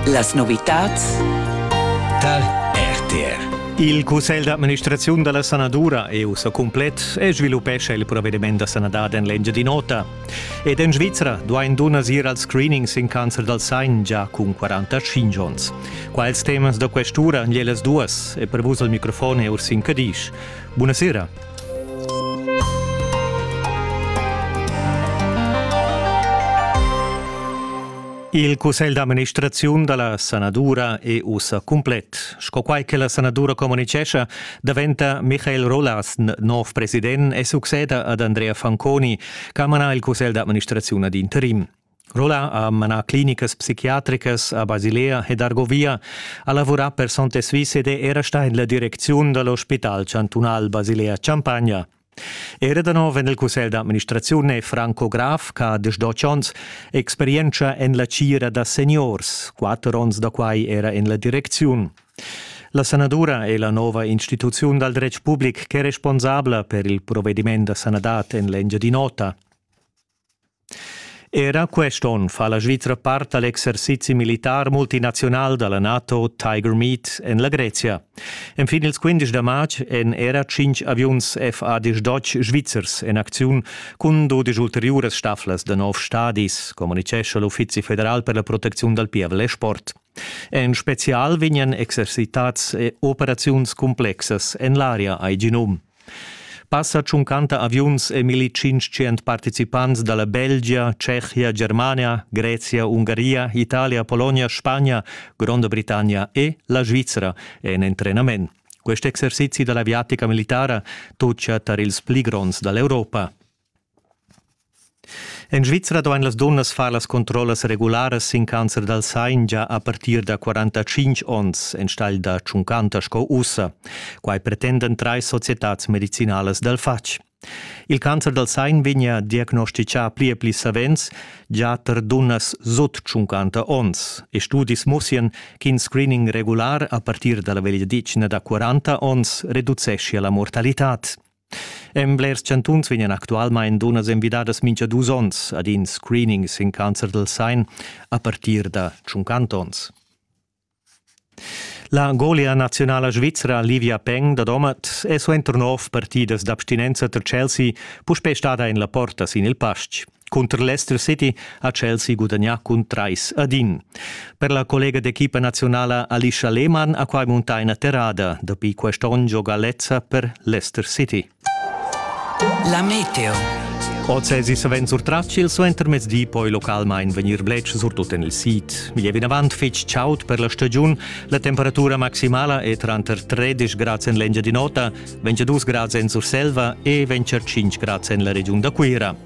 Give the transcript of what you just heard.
Las novitads tar RTR. Il Cussegl d'administraziun da la sanadura EU sa cumplet e sviluppescha il provediment da sanadad en l'Engiadin'Ota. Ed en Svizra duain dunnas ir als screenings in cancer dal sein già cun 45 onns. Quals temas da questura han las duas e per vus al microfon è Ursin Cadisch. Buonasera. Il cussegl d'amministraziun da la sanadura è ussa cumplet. Sco quai che la sanadura communitgescha, daventa Michael Rolasn nov president e succeda ad Andrea Fanconi, che ha manà il cussegl d'amministraziun ad interim. Rolla ha manà clinicas psichiatricas a Basilea ed Argovia, ha lavurà per Sonte Swiss ed è era stà en la direcziun da l'ospital chantunal Basilea-Champagna. Era da nov en il cussegl d'administraziun è Franco Graf, che ha diesch onns, experientscha en la tgira da seniors, quatter onns da quai era en la direcziun. La sanadura è la nova instituziun dal dretg public ch'è responsabla per il provediment da sanadad en l'Engiadin'Ota. Era quest onn fa la Svizra part al exercizi militar multinazional da la NATO Tiger Meet en la Grezia. Enfin ils 15 da matg èn era tschintg aviuns FADH Deutsch svizzers en acziun cun dudesch ulteriuras staflas da nov stadis, communitgescha l'Uffizi federal per la protecziun dal pievel e sport. En spezial vegnan exercitads operaziuns cumplexas en l'aria ai genum. Passa tschuncanta aviuns e 1500 participants dalla Belgia, Tschechia, Germania, Grezia, Ungaria, Italia, Polonia, Spagna, Gronda Britannia e la Svizra en entrenament. Quest exercizi dalla aviatica militara tutga tar ils pli gronds dall'Europa. En Svizra duain las dunnas far las controllas regularas sin cancer dal sain gia a partir da 45 onns enstagl da 50 sco ussa. Quai pretendan trais societads medicinalas dal fatg. Il cancer dal sain vegnia diagnosticà pli e pli savens gia tar dunnas sut 50 onns e studis mussian ch'in screening regular a partir da la vegliadetgna da 40 onns reduceschia la mortalitad. En blers chantuns vegnan actualmain dunnas envidadas mintga dus onns ad in screening sin cancer del Sein a partir da tschunquant onns. La golia nazionala svizra Livia Peng da Domat è suenter nov partidas d'abstinenza tar Chelsea puspè stada en la porta sin il pastg. Cunter l'Leicester City ha Chelsea gudagnà cun trais ad in. Per la collega d'equipa nazionala Alicia Lehmann ha quai muntà ina terrada. Dapi quest onn gioga lezza per Leicester City. La meteo. Oz èsi savens surtratg il suentermezdi poi localmain vegnir bletsch, surtut en il sid. Igl è vinavant fitg chaud per la stagiun. La temperatura maximala è tranter 13 grads en l'Engiadin'Ota, 22 grads en Surselva e 25 grads en la regiun da Cuira.